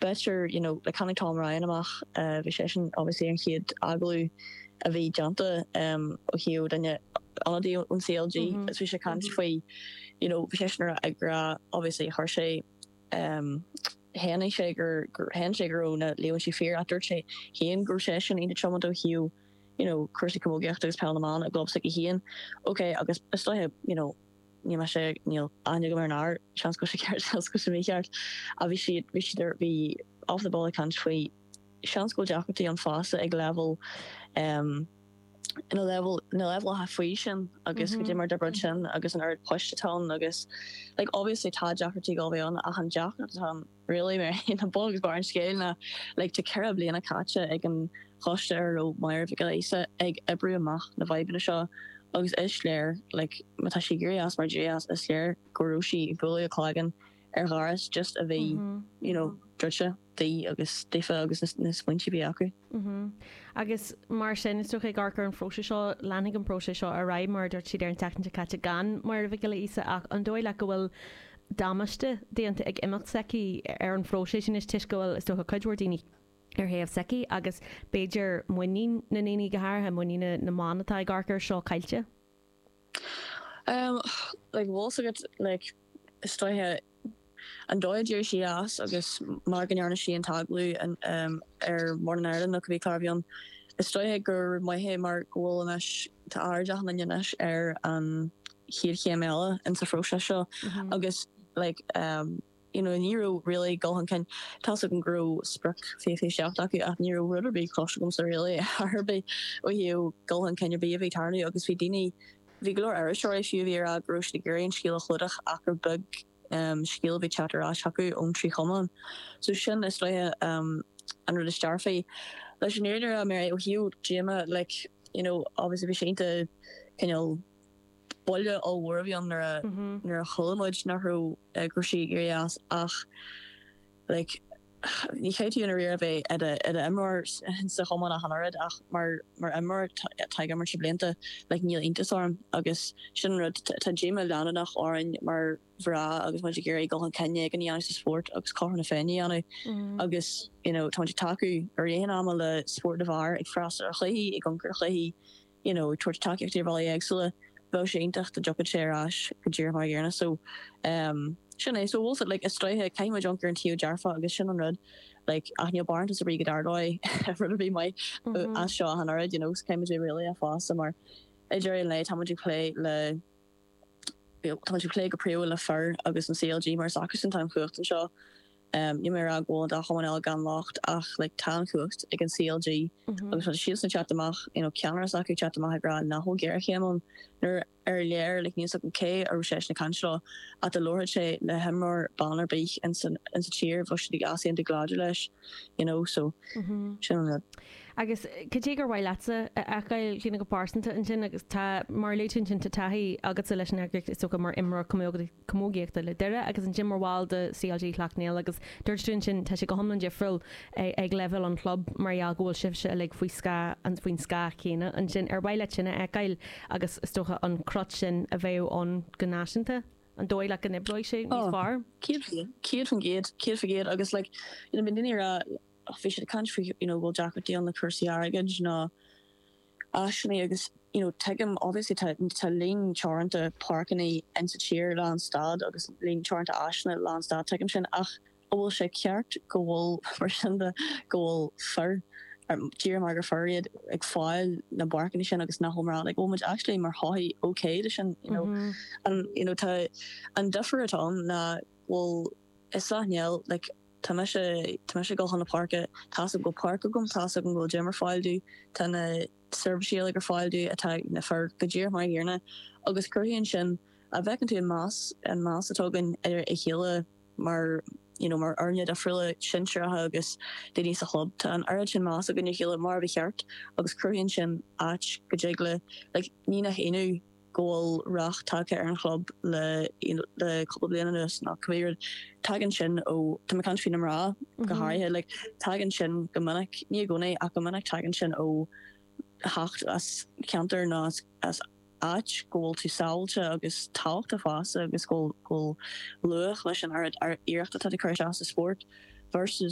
B'fhéidir, you know, like tháinig Tom Ryan amach, bhí seisean obviously an chéad agallamh a bhí déanta ó thaobh duine, ionadaí ón CLG agus bhí sé ag caint faoi, you know, bhí seisean ag rá obviously gur sé, shéan sé gur, shéan sé go raibh na líomhaintí fíor ach dúirt sé féin go raibh seisean iontach tiomanta ó thaobh, you know, cúrsaí camógaíochta agus Peil na mBan i gclub s'aige féin. Okay, agus is dóiche, you know, níl mise, níl aithne agam ar an fhear, seans go bhfuil sé ceart, seans go bhfuil sé mícheart, ach bhí siad, bhí siad ar, bhí off the ball ag caint faoi, seans go bhfuil deacrachtaí ann fosta ag leibhéal em na leibhéal, na leibhéal atá faoi sin agus cad é mar a d'oibreodh sin agus an oiread poist atá ann agus like obviously tá deacrachtaí ag gabháil a bheith ann ach an deacracht atá ann really ná bun is barr an scéil ná like tá ceithre bliana caite ag an choiste ar a raibh Máire Mhic Giolla Íosa ag oibriú amach na bhfadhbanna seo agus is léir like má tá sí éirithe as mar a d'éirigh as is léir go raibh sí ag bualadh a cloigeann ar dhoras just a bhí you know druidte di agus daofa agus na smaointe a bhí acu. Agus mar sin is dócha ag amharc ar an phróiseas seo leanfaidh an próiseas seo ar aghaidh mar a dúirt siad ar an tseachtain seo caite gan Máire Mhic Giolla Íosa ach an dóigh leat go bhfuil damáiste déanta ag imeacht s'aici ar an phróiseas anois toisc go bhfuil, is dócha, cuid mhór daoine ar thaobh s'aici agus, b'fhéidir, muinín na ndaoine, go háirithe muinín na mban atá ag amharc air seo, caillte. Like, bhfuil fhios agat, like, is dóiche, an dóigh a d'éirigh sí as agus mar go ndearna sí an t-agallamh in, em, ar Morning Ireland nó cibé clár a bhí ann, is dóiche gur maith é mar go bhfuil anois, tá aird á tharraingt anois ar an, chéad chéim eile insa phróiseas seo agus like you know ní raibh really dul chun cinn. Tá's agam go raibh sprioc 2027 acu ach ní raibh rud ar bith cloiste agamsa really ar ar bith ó thaobh dul chun cinn ar bith a bhí ag tarlú agus bhí daoine, bhí go leor iriseoirí fiú a bhí ag rá go raibh siad ag iarraidh an scéal a chlúdach ach gur beag scéal a bhí ag teacht ar ais acu ón trí chumann. So sin is dóiche an rud is dearfaí. Leis an údar a mé ó thaobh díoma like you know obviously bhí sé iontach cineál Buille ollmhór a bhí ann nuair a chuala muid nach raibh go raibh sí ag éirí as ach like ní chaithfidh tú i ndáiríre a bheith i d'imreoir sa chumann ach an oiread ach mar imreoir atá ag imirt leis na blianta like níl iontas orm agus sin an rud, tá díoma leanúnach orainn mar mhná agus muid ag iarraidh dul chun cinn éigin a dhéanamh sa spórt agus cothrom na féinne a dhéanamh agus you know tá muid ag tacú i rith an ama le spórt na bhfear, ag freastal ar chluichí, ag amharc ar chluichí. you know ag tabhairt tacaíochta ar bhealaí éagsúla bheadh sé iontach dá dtiocfadh sé ar ais go díreach mar an gcéanna so em sin é so bhfuil fhios agat like is dóiche caithfidh muid amharc ar an taobh dearfach agus sin an rud like ach níl barántas ar bith go dtarlóidh rud ar bith maith mm-hmm. as seo ach an oiread you know caithfidh muid a bheith réalaíoch fosta mar i ndáiríre tá muid ag plé le Tá mise ag plé go príomha le fir agus an CLG mar is acusan atá an chumhacht anseo. Níl mé ag rá go bhfuil an dá chumann eile gan locht ach like tá an chumhacht ag an CLG agus tá siadsan ag teacht amach, you know, ceannaire s'acu ag teacht amach ag rá nach bhfuil géarchéim ann nuair ar léir like níl a fhios agam cé a raibh seisean ag caint leo ach dá labharfadh sé le himreoir ban ar bith ins an tír bheadh siad ag easaontú go láidir leis, you know, so sin an rud. Agus cad é gur mhaith leatsa a fheiceáil a Chlíodhna go pearsanta ansin? Agus tá, mar a luaigh tú ansin, tá taithí agatsa leis an eagraíocht, is dócha, mar imreoir camógaíochta le Doire agus ansin mar bhall de CLG Shleacht Néill agus dúirt tú ansin, tá sé go hiomlán difriúil ag leibhéal an chlub mar gheall go bhfuil sibhse uilig faoi scáth, faoin scáth chéanna ansin. Ar mhaith leat sin a fheiceáil agus, is dócha, an cruth sin a bheith ann go náisiúnta, an dóigh leat go n-oibreoidh sé níos fearr? Céad faoin gcéad, céad faoin gcéad agus like, you know, bíonn daoine ag rá. ach bhí siad ag caint faoi you know go bhfuil deacrachtaí ann na cúrsaí airgid nó áiseanna agus you know tuigim obviously tá tá líon teoranta páirceanna insa tír lán stad agus líon teoranta áiseanna lán stad tuigim sin ach an bhfuil sé ceart go bhfuil mar sin de go bhfuil fir díreach mar gur fir iad ag fáil na bpáirceanna sin agus nach bhfuil mná like bhfuil muid actually mar shochaí ok le sin you know an you know tá an difear atá ann ná bhfuil i Sleacht Néill, like, tá mise, tá mise ag dul chun na páirce, tá's agam go bhfuil páirc agam, tá's agam go bhfuil gym ar fáil domh, tá na seirbhísí uilig ar fáil domh atá ag na fir go díreach mar an gcéanna agus cruthaíonn sin, a' bhfeiceann tú an meas, an meas atá againn ar a chéile mar, you know, mar fhoirne difriúla, sinsearacha agus daoine sa chlub, tá an oiread sin meas againn ar a chéile mar a ba cheart agus cruthaíonn sin áit go dtig le, like, ní nach ionadh. go bhfuil rath tagtha ar an chlub le cúpla bliain anuas nó cibé rud, tagann sin ó, tá mé ag caint faoi na mná go háirithe, like tagann sin go minic, ní i gcónaí ach go minic, tagann sin ó theacht as ceantar nó as áit go bhfuil tú sábháilte agus tábhachtach fosta agus go bhfuil luach leis an oiread iarrachta atá tú ag cur isteach sa spórt versus